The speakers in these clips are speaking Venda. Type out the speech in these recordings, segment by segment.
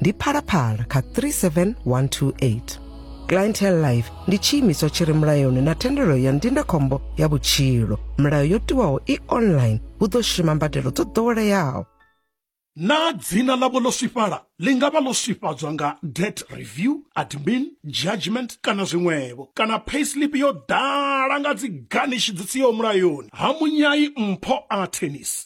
ndi phalaphala kha 37128 clientele life ndi tshiimiswa tshi re mulayoni na thendelo ya ndindakhombo ya vhutshilo milayo yo tiwaho i online hu ḓo shuma mbadelo dzo ḓoweleaho naa dzina ḽavho ḽo swifhala ḽi nga vha ḽo swifhadzwa nga debt review admin judgment kana zwiṅwevho kana payslip yo ḓala nga dzi ganishi dzi siho mulayoni ha munyai mpho a tennis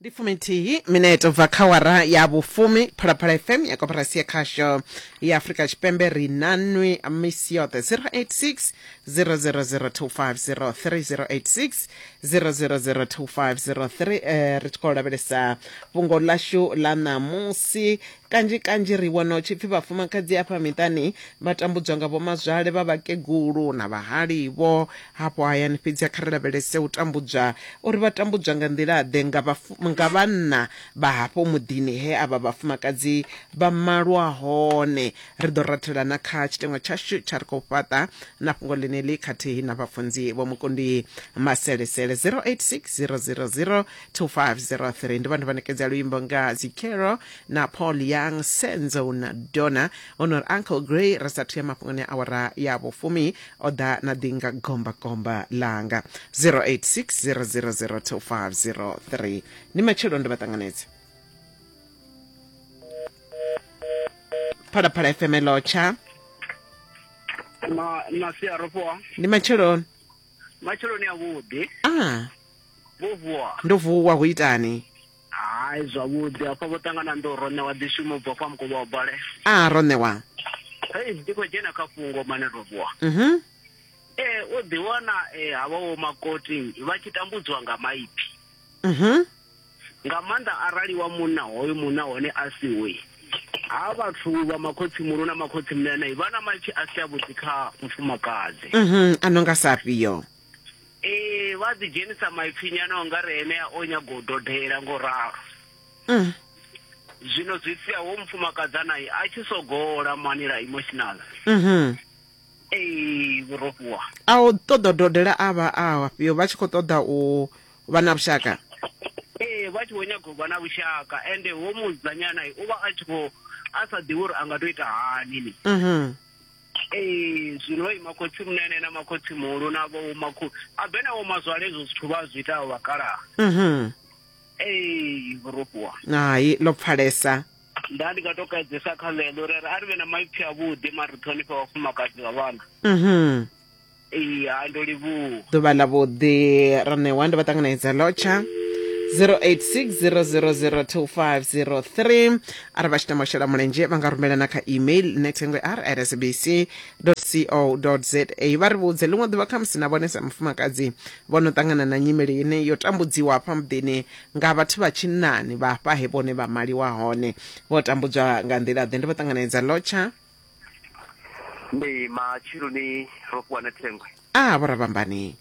ndi fuminthihi minete bva kha wara ya vhufumi phalaphala fm ya koporasi ya khasho ya afurika tshipembe ri na nwi misi yoṱhe 086 000250 3086 000250 eh, ri tshi khou lavhelesa fhungo ḽashu ḽa ṋamusi Kanzhi kanzhi ri wana hu tshi pfi vhafumakadzi afha miṱani vha tambudzwa nga vhomazwale vha vhakegulu na vhahali vho hafho hayani fhedzi kha ri lavhelese u tambudzwa uri vha tambudzwa nga nḓila-ḓe nga nga vhanna vha hafho muḓini he avha vhafumakadzi vha malwa hone. Ri ḓo rathela na kha tshiteṅwa tshashu tsha ri khou fhaṱa na fhungo ḽeneḽi khathihi na vhafunzi Vho Mukundi Maselesele 086 000 2503 ndi vhone vha ṋekedza luimbo nga Zikero na paul young senzo na dona honor uncle gray ri sathu ya mafhungoni a awara ya vhufumi o ḓa na ḓi nga gombagomba langa 0860002503 ndi matshelo ndo vha ṱanganedza phalaphala fm lotsha ma masia ro vuwa ndi matsheloni matsheloni a vhuḓi a vho vuwa ndo vuwa hu itani Hai zwavhuḓi hafha vho ṱangana ndo ro ṋewa ḓishumo bva kwa mukovha wa bale a ah, ro ṋewa hei ndi khou dzhena kha fhungo mane robuwa mhm. ee eh, o ḓiwana eh, havha wo makoti vha tshi tambudziwa nga maipfi mhm. nga maanḓa arali wa munna hoyo munna hone a si we ha vhathu vha makhotsi muno na makhotsi mnenei vha na maipfi a si avhuḓi kha mufumakadzi mhm, a no nga sa afhio Ee, vha ḓi dzhenisa maipfi nyana unga re enea o nyaga u dodela ngo ralo. Mm. Zwino zwi sia ho mufumakadza naye a tshi sogola manila emotional. Mhm. Ee, vhurofhiwa. A u ṱoḓa dodela a vha a afhio vha tshi khou ṱoḓa u vha na vhushaka. Ee, vha tshi vho nyaga u vha na vhushaka ende ho mudzanyana u vha a tshi khou a sa ḓivhi uri a nga to ita hani ni. Mhm. Ee, zwino ima khotsi munene na makhotsi muhulu na vho makhu a bena wo mazwale ezwo zwithu vha zwi itaho vhakalaha mhm ee vhurofhiwa hai ḽo pfalesa nda ndi nga to kaidzesa kha ḽeḽo ri ri a ri vhe na maipfi avhuḓi mara ri ṱhonifhe vhafumakadzi vha vhana mhm ee hai ndo livhuwa ḓuvha ḽa vhuḓi ra ṋewa ndi vha ṱanganedza lotsha 0860002503 arali vha tshi tama u shela mulenzhe vha nga rumela na kha email netengwe r at sabc co za vha ri vhudze ḽiṅwe ḓuvha khamusi na vhone sa mufumakadzi vho no ṱangana na nyimele ine yo tambudziwa hafha muḓini nga vhathu vha tshinnani vha hafha he vhone vha maliwa hone vho tambudzwa nga nḓila ḓe ndi vho ṱanganedza lotsha ndi matsheloni ro fhiwa na thengwe a vho rabambani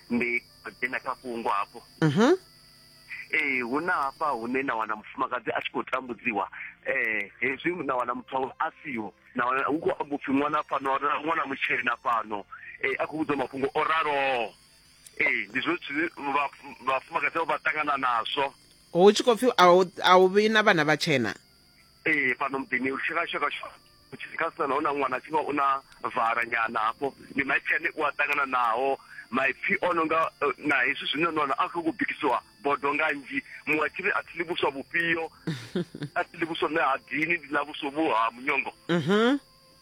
ndi dzhena kha fhungo hafho mhm ee hu na hafha hune na wana mufumakadzi a tshi khou tambudziwa eh hezwi na wana muthu wawe a siho na wana hu khou amba upfhi ṅwana fhano ra- ṅwana mutshena fhano eh a khou vhudzwa mafhungo o raloho ee ndi zwo zwithu zwine vha- vhafumakadzi vha vha ṱangana nazwo hu tshi khou pfi a hu- a hu vhi na vhana vhatshena ee fhano muḓini uri tshikasha kashu khasitana naho na ṅwana tshivha u na vala nyana hafho ndi maipfi ane u a ṱangana naho maipfi o no nga eh, na hezwi zwine nwana a khou bikisiwa bodo nga nzhi muṅwe a tshiri a thi ḽi vhuswa vhufhio a thi ḽi vhuswa ṋe ha dini ndi ḽa vhuswa vhu ha munyongo mhm.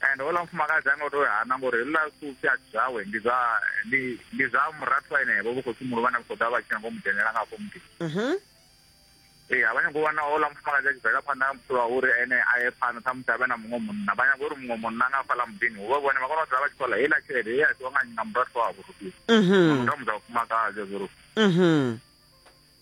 and houḽa mufumakadzi a nga tou hana ngori houḽa sufi a zwawe ndi zwa ndi ndi zwa murathu enevho vho khotsi muhulu vhane vha khou ḓa vha tshi nyanga u mu dzhenela nga afho muḓini mhm. ee a vha nyanga u wana houḽa mufumakadzi a tshi bvela phanḓa nga mutshilo wa uri ene a ye phanḓa ṱhamusi a vhe na muṅwe munna vha nyanga uri muṅwe munna nga afhaḽa muḓini hu vha vhone vha kona u dzula vha tshi khou ḽa heiḽa tshelede ye a tsiwa nga nga murathu wavho mhm. mutamudza mufumakadzi zwo ri mhm.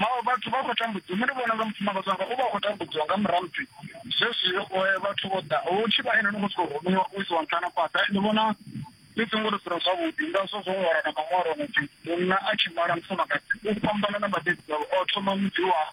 mawe vhathu vha khou tambudziwa nṋe ndi vhona nga mufumakadzi wanga u vha khou tambudziwa nga murahu pfi zwezwi eh, vhathu vho ḓa u tshi vha ene no khou sokou rumiwa u isiwa nṱhana fhaḓa ndi vhona ndi songo ri dzula zwavhuḓi ngazwo zwo ṅwala na maṅwalo muthu munna a tshi mala mufumakadzi u fhambana na vhabebi vhawe o thoma mudzi wawe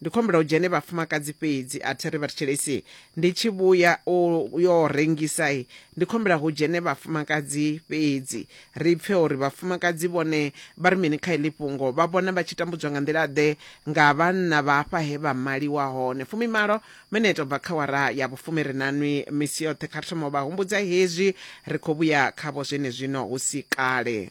Ndi khou humbela u dzhene vhafumakadzi fhedzi a thi ri vhathetshelesi ndi tshi vhuya u yo rengisa i ndi khou humbela hu dzhene vhafumakadzi fhedzi ri pfe uri vhafumakadzi vhone vha ri mini kha iḽi fhungo vha vhona vha tshi tambudzwa nga nḓila ḓe nga vhanna vha hafha he vha maliwa hone fumimalo mineto bva kha wara ya vhufumi ri na nwi misi yoṱhe kha ri thoma u vha humbudza hezwi ri khou vhuya khavho zwenezwino hu si kale.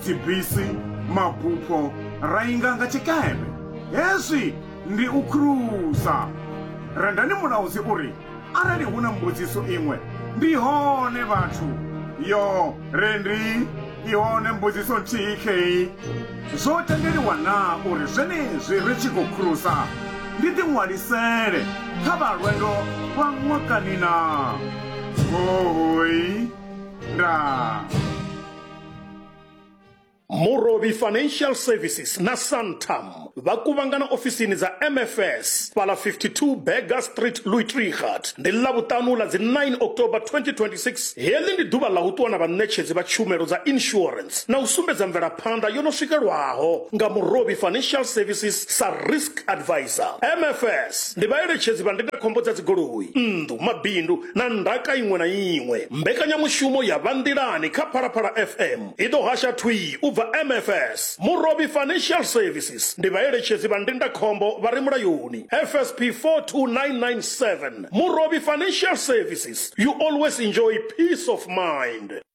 dzibisi, mabupho ra inga nga tshikembe. Hezwi ndi u khulusa. Rendani mulaudzi u ri, Arali hu na mbudziso iṅwe, ndi hone vhathu. Yo, Rendi, i hone mbudziso nthihi khei. Zwo tendeliwa naa uri zwenezwi ri tshi khou khulusa ndi ḓiṅwalisele kha vha lwendo lwa ṅwakani naa? Hohoi, Ndaa. murobi financial services na santam vha kuvhangana ofisini dza mfs fhala 52 berger street louitrigat ndi ḽavhuṱanu ḽa dzi 9 october 2026 heḽi ndi ḓuvha ḽa u ṱuwa na vhaṋetshedzi vha tshumelo dza insurance na u sumbedza mvelaphanḓa yo no swikelwaho nga murobi financial services sa risk advisor mfs ndi vhaeletshedzi vha ndindakhombo dza dzigoloi nnḓu mabindu na ndaka iṅwe na iṅwe. Mbekanyamushumo ya Vha Nḓilani kha Phalaphala FM i ḓo hasha thwii u bva MFS. Murovhi Financial Services ndi vhaeletshedzi vha ndindakhombo vha re mulayoni, FSP 42997. Murovhi Financial Services, you always enjoy peace of mind.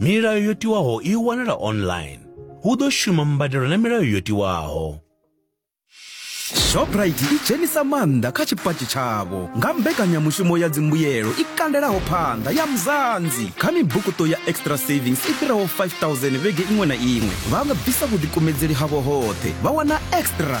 Milayo yo tiwaho i wanala online. Hu ḓo shuma mbadelo na milayo yo tiwaho. shoprite i dzhenisa maanḓa kha tshipatshi tshavho nga mbekanyamushumo ya dzimbuyelo i kandelaho phanḓa ya muzanzi kha mibukuṱo ya extra savings i fhiraho 5000 vhege iṅwe na iṅwe vha nga bvisa vhuḓikumedzeli havho hoṱhe vha wana extra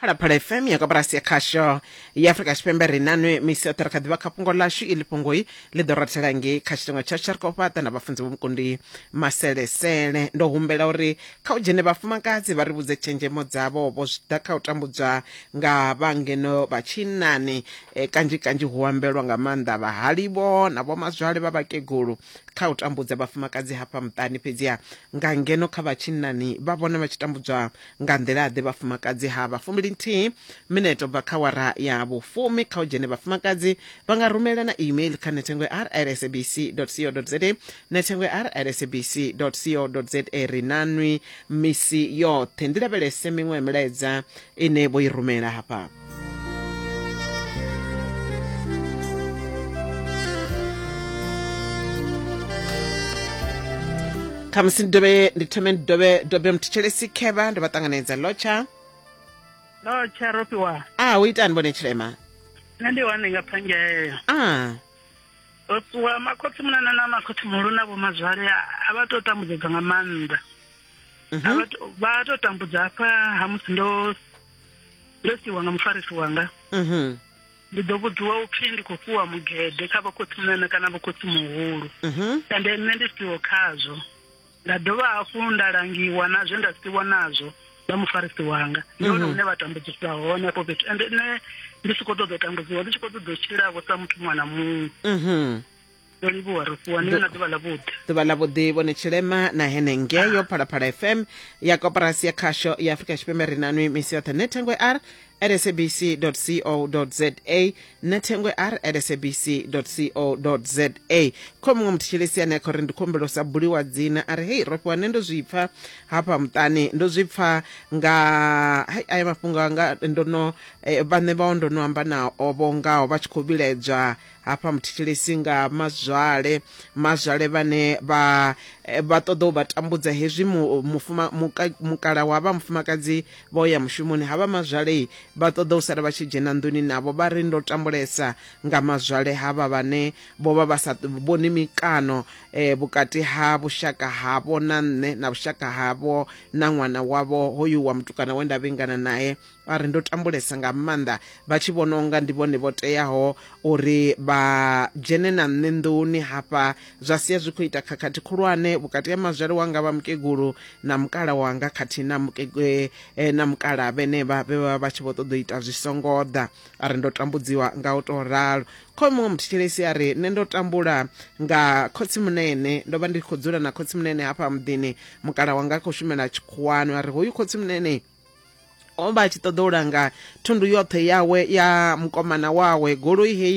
phalaphala fm ya koporasi ya khasho ya afurika tshipembe ri nanwe misi yoṱhe ri kha ḓivha kha fhungo ḽashu iḽi fhungoi ḽi ḓo rathela ngei kha tshitengo tsha tsharikofhaṱa na vhafunzi vhomukundi maselesele ndo humbela uri kha u dzhene vhafumakadzi vha ri vhudze tshenzhemo dzavho vho zwi ḓa kha u tambudzwa nga vhangeno vha tshinnani e, kanzhi kanzhi hu ambelwa nga maanḓa vhahalivho na vhomazwale vha vhakegulu kha u tambudza vhafumakadzi hafha muṱani fhedziha nga ngeno kha vha tshinnani vha vhona vha tshi tambudzwa Nga nḓila-ḓe? Vhafumakadzi ha vha fumili nthihi mineto bva kha wara ya vhufumi kha u dzhene vhafumakadzi vha nga rumelana email kha nethengwe rsabc dot co dot za nethengwe rsabc dot co dot za ri nanwi misi yoṱhe ndi lavhelese miṅwe milaedza ine vho i rumela hafha. khamusi ndi dovhe ndi thome ndi dovhe dobe mthetshelesi khevha ndo vha ṱanganedza lotsha lotsha ropiwa a ah, u itani vhone tshilema nṋe ndi wane nga phangeleyo a ah. ropiwa makhotsi munana na makhotsi muhulu na vhomazwale a vha tou tambudzedzwa nga maanḓa mhm. vha tou tambudza hafha ha musi ndo ndo siiwa nga mufarisi wanga mhm ndi ḓo vhudziwa upfi ndi khou fhiwa mugede kha vhakhotsimunana kana vhakhotsi muhulu mhm ende nṋe ndi siho khazwo nda dovha hafhu nda langiwa na zwe nda siwa nazwo nga mufarisi wanga ndi hone hune vha tambudzisa hone afho fhethu ende nṋe ndi si khou ṱoḓa u tambudziwa ndi tshi khou ṱoḓa u tshilavho sa muthu muṅwe na muṅwe mhm ndo livhuwa ro fhiwa niwe na ḓuvha ḽa vhuḓi ḓuvha ḽa vhuḓi vhone tshilema na hene ngeyo ah. phalaphala fm ya koporasi ya khasho ya afrika tshipembe ri nanwi misi yoṱhe ne thengwe r sabc co za na thengwe r sabc co za kho muṅwe muthu tshilisi ane a kha uri ndi khumbelo sa buliwa dzina a ri hei rofhiwa ne ndo zwi pfa hafha muṱani ndo zwi pfa nga hai aya mafhungo anga ndo no eh, vhaṋe vhao ndo no amba nao vho ngaho vha tshi khou vhiledzwa hafha muthetshelesi nga mazwale mazwale vhane vha eh, vha ṱoḓa u vha tambudza hezwi mukala wa vha mufumakadzi vho ya mushumoni havha mazwale vha ṱoḓa u sala vha tshi dzhena nḓuni navho vha ri ndo tambulesa nga mazwale havha vhane vho vha vha sa vhoni mikano eh, vhukati ha vhushaka havho na nṋe na vhushaka havho na ṅwana wavho hoyu wa mutukana we nda vhingana naye vha ri ndo tambulesa nga maanḓa vha tshi vhona unga ndi vhone vho teaho uri vha dzhene na nṋe nḓuni hafha zwa sia zwi khou ita khakhathi khulwane vhukati ha mazwale wanga vha mukegulu na mukala wanga khathihi na mukegwe eh, na mukala vhenevha vhe vha vha tshi vho ṱoḓa u ita zwi songo ḓa a ri ndo tambudziwa nga u tou ralo khoe muṅwe muthetshelesi a ri nṋe ndo tambula nga khotsimunene ndo vha ndi khou dzula na khotsimunene hafha muḓini mukala wanga a khou shumela tshikhuwani a ri hoyu khotsimunene o vha a tshi ṱoḓa u langa thundu yoṱhe yawe ya mukomana wawe goloi heyi